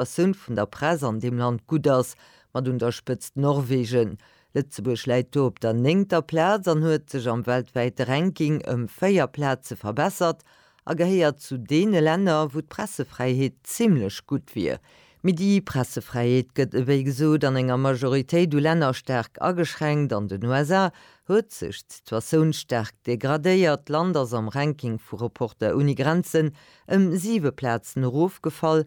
d'Situatioun vun der Press an deem Land gutt ass, mat un der Spëtzt Norwegen. Lëtzebuerg läit do op der néngter Plaz an huet sech am weltwäite Ranking ëm véier Plaze verbessert a gehéiert zu deene Länner, wou d'Pressefräiheet zimmlech gutt wier. Mee déi Pressefräiheet gëtt ewéi gesot an enger Majoritéit u Länner staark ageschränkt. An den USA huet sech d'Situatioun staark degradéiert, d'Land ass am Ranking vu Reporter ohne Grenzen ëm siwe Plazen erofgefall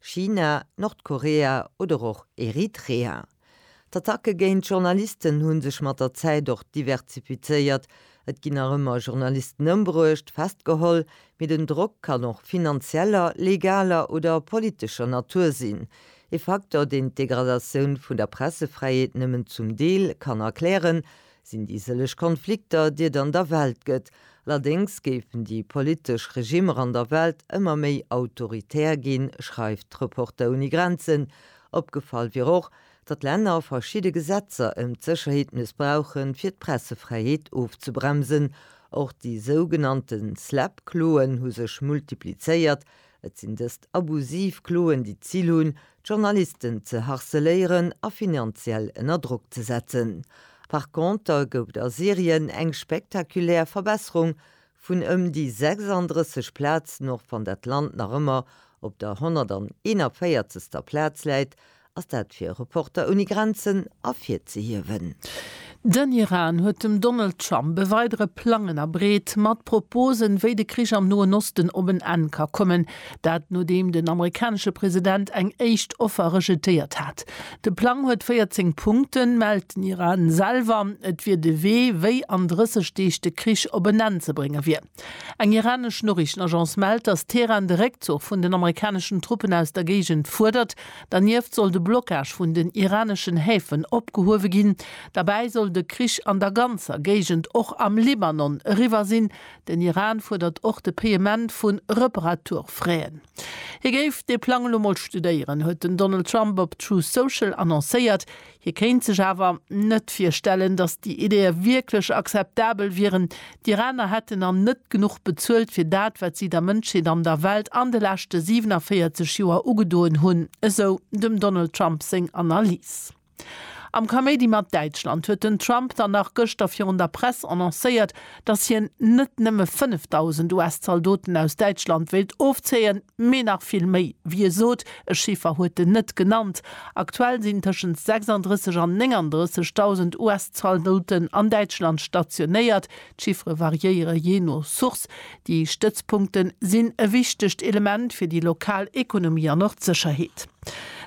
China, Nordkorea oder och Eritrea. D'Attacke géint Journalisten hu sech mat der Zäit och diversifizéiert. Et ginn nach ëmmer Journalisten ëmbruecht, festgeholl, mee den Drock kann och finanzieller, legaler oder politescher Natur sinn. Ee Facteur, deen d'Degradatioun vun der Pressefräiheet nëmmen zum Deel kann erklären, sinn déi sëlleg Konflikter, déi et an der Welt gëtt. Allerdéngs géifen déi politesch Regimmer an der Welt ëmmer méi autoritär ginn, schreift Reporter ohne Grenzen. Opgefall wier och, datt Länner verschidde Gesetzer ëm d'Sécherheet mëssbrauchen, fir d'Pressefräiheet ofzebremsen. Och déi sougenannte SLAPP-Kloen hu sech multiplizéiert, Et sinn dëst abusiv Kloen, déi d'Zil hunn, d'Journalisten ze harceléieren a finanziell ënner Drock ze setzen. Par conter gouf et a Syrien eng spektakulär Verbesserung vun ëm déi 36 Plazen, och wann dat Land nach ëmmer op der 141. Plaz läit Ass dat fir Reporter Ouni Grenzen ervirzehiewen? Den Iran huet dem Donald Trump e weidere Plang ënnerbreet, mat Proposen, wéi de Krich am Noen Osten op en Enn ka kommen. Dat nodeem den amerikanesche President eng éischt Offer rejetéiert hat. De Plang huet 14 Punkten, mellt den Iran selwer. Et wier de Wee, wéi an 30 Deeg de Krich op en Enn ze brénge wier. Eng iranesch Noriichtenagence mellt, datt Teheran de Réckzuch vun den amerikaneschen Truppen aus der Géigend fuerdert. Dernieft soll de Blockage vun den iraneschen Häfen opgehuewe ginn. Derbäi soll de Krich an der ganzer Géigend, och am Libanon, eriwwer sinn. Den Iran fuerdert och de Payement vu Reparaturfraien. Hie géif dee Plang elo mol studéieren, huet den Donald Trump op Truth Social annoncéiert. Hie kéint sech awer net virstellen, datt déi Ideeë wierklech akzeptabel wieren. D'Iraner hätten an net genuch bezuelt fir dat, wat si der Mënschheet an der Welt an de leschte 47 Joer ugedoen hunn, esou dem Donald Trump seng Analys. Am Kaméidi mat Däitschland huet den Trump dann nach gëschter virun der Press annoncéiert, datt hien net nëmme 5.000 US-Zaldoten aus Däitschland wéilt ofzéien, Mee nach vill méi. Wéi e sot, e Chiffer huet en net genannt, aktuell sinn tëschent 36 an 39.000 US-Zaldoten an Däitschland stationéiert. D'Chiffere variéiere jee no Source. Déi Stëtzpunkte sinn e wichtegt Element fir déi lokal Ekonomie an och d'Sécherheet.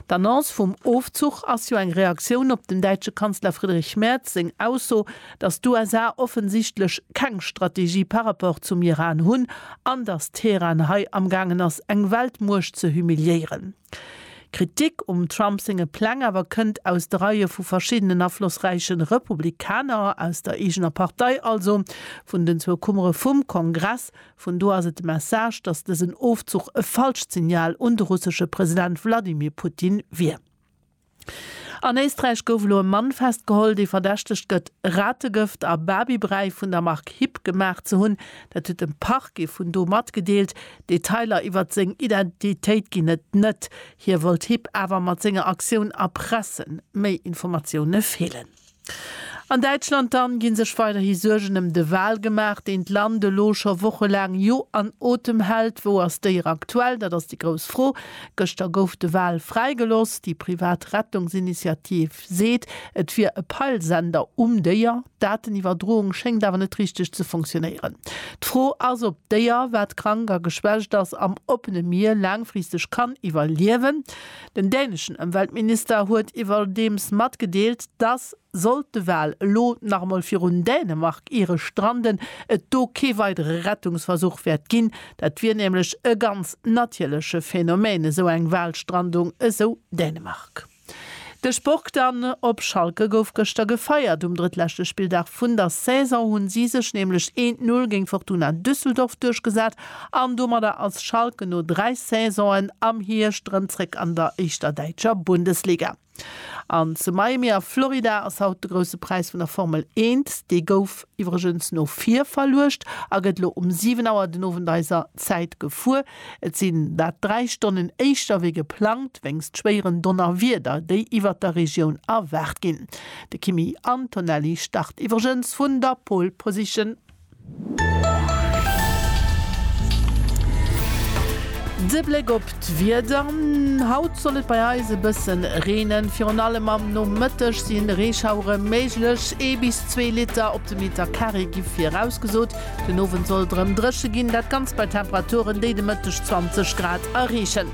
D'Annonce vum Ofzuch ass jo eng Reaktioun op dem däitsche Kanzler Friedrich Merz seng Ausso, dass d'USA offensichtlech keng Strategie par rapport zum Iran hunn an dass Teheran hei amgaangen ass eng Weltmuecht ze humiliéieren. Kritik um Trump senge Pläng awer kënnt aus de Reie vu verschiddenen aflossräiche Republikaner, aus der eegener Partei also, vun den zwou Kummere vum Kongress. Vun do ass et de Message, dass dësen Ofzuch e falscht Signal un de russesche President Wladimir Putin wier. An Éisträich gouf elo e Mann festgeholl, dee verdächtegt gëtt, Rategëft a Babybräi vun der Mark Hip gemaach ze hunn. Dat huet de Parquet vun do matgedeelt. Detailer iwwert seng Identitéit ginn et net. Hie wollt Hip awer mat senger Aktioun erpressen. Méi Informatioune feelen. An Däitschland dann ginn sech weiderhi Suergen em de Wal gemaach, deen d'Land elo scho wochelaang jo an Otem hält. Wou ass d'Déier aktuell? Dat ass déi grouss Fro. Gëschter gouf de Wal fräigeloss. Déi privat Rettungsinitiativ seet, et wier e Peilsender um Déier. D'Dateniwwerdroung schéngt awer net richteg ze funktionéieren. D'Fro ass, ob d'Déier, wat krank a geschwächt ass, am oppene Mier laangfristeg kann iwwerliewen. Den däneschen Ëmweltminister huet iwwerdeems matgedeelt, dass, sollt de Wal elo nach emol virun Dänemark iere stranden, et do kee weidere Rettungsversuch wäert ginn. Dat wier nämlech e ganz natierleche Phänomen, esou eng Walstrandung, esou Dänemark. De Sport dann, Op Schalke gouf gëschter gefeiert. Um drëttleschte Spilldag vun der Saison hu si sech nämlech een Null géint Fortuna Düsseldorf duerchgesat An domadder ass Schalke no dräi Saisonen am Hierscht erëm zréck an der éischter däitscher Bundesliga. An zu Miami a Florida ass haut de Grousse Präis vun der Formel Eent. Dee gouf iwwregens no vir verluecht a gëtt elo um 7 Auer den Owend eiser Zäit gefuer. Et sinn dat dräi Stonnen éischter wéi geplangt, wéinst schwéieren Donnerwieder, déi iwwert der Regioun erwaart ginn. De Kimi Antonelli start iwwregens vun der Pole Position. De Bléck op d'Wieder, Haut soll et bei eis e bësse reenen. Virun allem am Nomëtteg si Reeschauere méiglech. Ee bis zwee Liter op de Meter Carré gi virausgesot. Den Owend soll et erëm dréche ginn, dat Ganzt bei Temperaturen, déi de Mëtteg 20 Grad erreechen.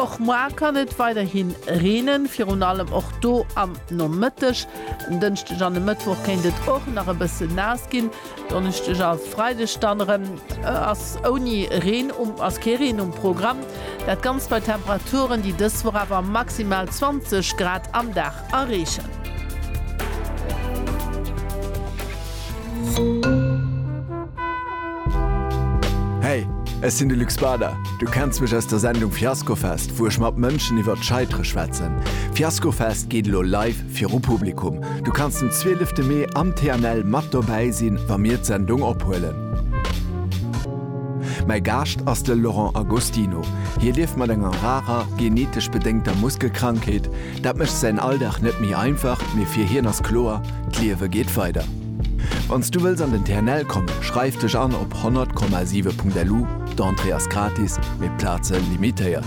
Och muar kann et weiderhi reenen, virun allem och do am Nomëtteg. En Dënschdeg an e Mëttwoch kéint et och nach e bësse naass ginn. Donneschdeg a Freideg dann erëm ass ouni Reen ass kee Reen um Programm. Dat Ganzt bei Temperaturen, déi dës Woch awer maximal 20 Grad am Dag erreechen. Hey, ech sinn de Luc Bader. Du kenns mech aus der Sendung Fiaskofest, wou ech mat Mënschen iwwert d'Scheitere schwätzen. Fiaskofest geet elo live Viru Publikum, Du kanns den 12 de Mee am TNL mat dobäi sinn, wa mir d'Sendung ophuelen. Mäi Gaascht ass de Laurent Agostino. Hie lieft mat enger rarer, genetesch bedéngter Muskelkrankheet. Dat mécht säin Alldag net méi einfach, mee fir hien ass kloer, D'Liewe geet weider. Wann s du wëlls an den TNL kommen, schreif dech an op 100,7.lu. D'Entrée ass gratis, mee d'Plaze limitéiert.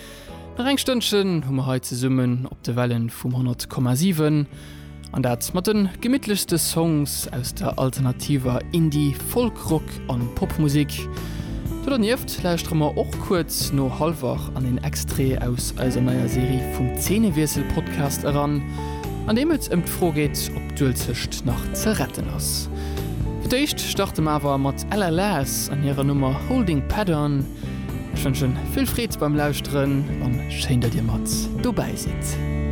Nach eng Stënnchen hu mer hei zesummen op de Wellen vum 100,7 an dat mat den gemittlechste Songs aus der alternativer Indie-, Folk-, Rock an Popmusik. Do dernieft lauschtere mer och kuerz no Halwach an een Extrait aus eiser neier Serie vum Zeenewiessel-Podcast eran, an deem et ëm d'Fro geet ob d'Uelzecht nach ze retten ass. Fir d'éischt starte mer awer mat LLAs an hirer Nummer Holding Pattern. Ech wënschen vill Freed beim Lauschteren an schéin dat dir mat dobäi sidd.